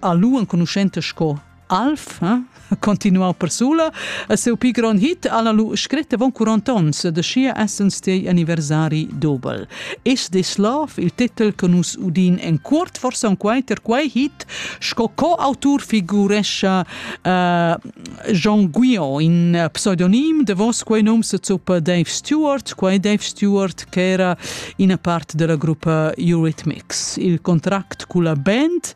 ha lu enconuschenta sco Alf, eh? continuau persula, a seu pi grand hit alla lu scret avon 40 ons de sia essence dei anniversari dobel. Is this love, il titel che nus udin en cuort forse un quai ter quai hit, sco co autur figurescha uh, Jean Guillon, in pseudonim de vos, quei num se zuppa Dave Stewart, quei Dave Stewart che era ina part della gruppa Eurythmics. Il contract cu la band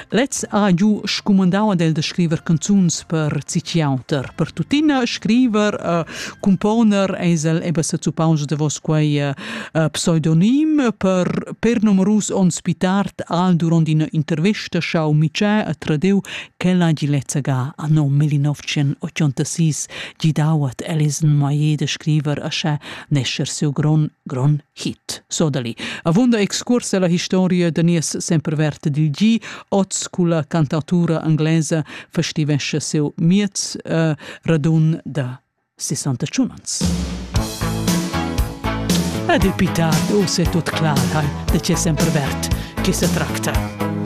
lez ha giu scumandau ad el de scriver canzuns per Ciciauter. Per tuttina scriver, uh, componer esel eba se zuppaus de vos quei uh, pseudonim per per numerus onns più tard al durant ina intervista schau Michel a Tradeu Quella hagi lezzaga anno 1986 gidau ad Alison Maillet da scriver ascha nescher siu gron, gron hit. Sodali. Avunda excurs alla historia da nies semperverte dil gi, oz culla cantautura anglesa festivesce siu miez uh, radun da 61 ans. Ed il pitar, o se tut clar, hai, de ce sempervert, che se tracta.